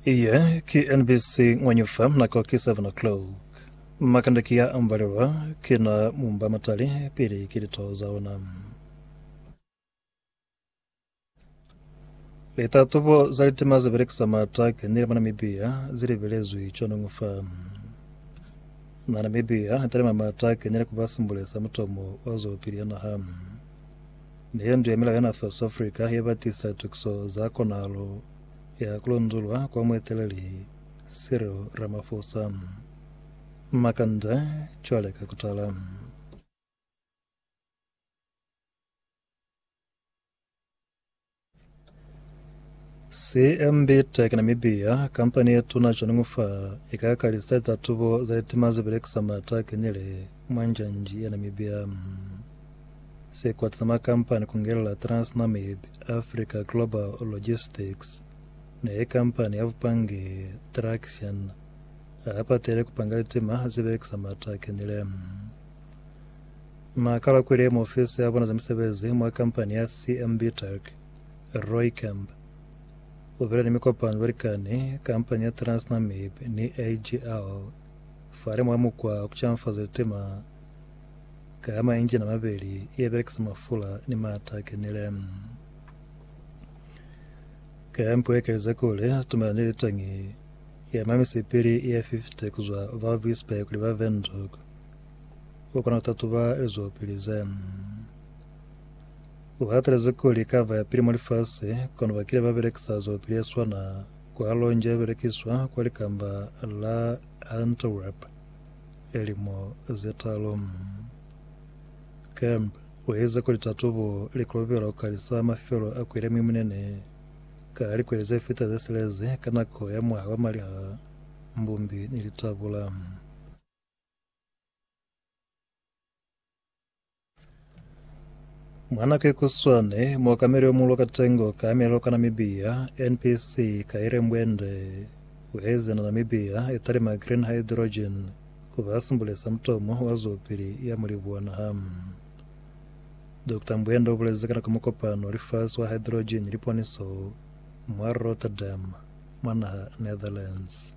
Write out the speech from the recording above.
Iye ki NBC Ngwanyufa nako ki 7 o'clock. Makanda ki ya ambalelwa ki na mumba matali pili ki lito za ona. Litatubo za litima ze belekisa mata kanile mwa Namibia zi libelezwi conong fa. Na Namibia talima mata kanile ku ba simbulesa mutomo wa zwelopili ya naha. Ne ye ndu ya milao ya North South Africa ye ba tisa tukiso za konahalo ya ku lonzulwa kwa mueteleli Cyril Ramaphosa. Makanda cwale ka kutala. CMB Tech Namibia, kampani ye tuna cwaningu fa i ka kalisa litatubo za litima ze belekisa mata a kenile mwa njanji ya Namibia. Sikwata sa makampani ku ngelela Transnamib Africa Global Logistics na ye kampani ya bupangi Traxian a patele ku panga litima ze belekisa mata a kenile. Na kalakwile mwa ofisi ya bona za misebezi mwa kampani ya CMB Tech. Rooikamp u bile ni mikopano ni balikani, kampani ya Transnamib ni AGL fale mwa mukwa wa ku canfaza litima ka mainjina a mabeli ye belekisa mafula ni maata a kenile. Kampu ye kalize kuli situmela ni litangi ya mamisipili ye 50 ku zwa Valvisberg kuli ba Windhoek. u kona ku tatuba lizwelopili ze u hatelezi kuli ka ba ya pili mwa lifasi. Kono ba kile ba belekisa zwelopili ye swana kwa Alonge ye belekiswa kwa likamba la Antwerp lilimo ze talu. Kemp u ize kuli tatubo li kolobelwa ku kalisa mafelo a kweli a muimunene ka likweli ze fita ze silezi ka nako ya mwaha wa maliha, mbumbi ni litabula. Mwanake kuswane mwakameli omulo katengo ka melo ka Namibia NPC Kaire Mbwende ueze na Namibia etalima green hydrogen kuba simbulesa mutomo wa zwopili ya mulibu wa naha. Dr Mbwende ubulezi ka nako mukopano wa lifasi wa hydrogen liponiso mwa Rotterdam mwa naha Netherlands.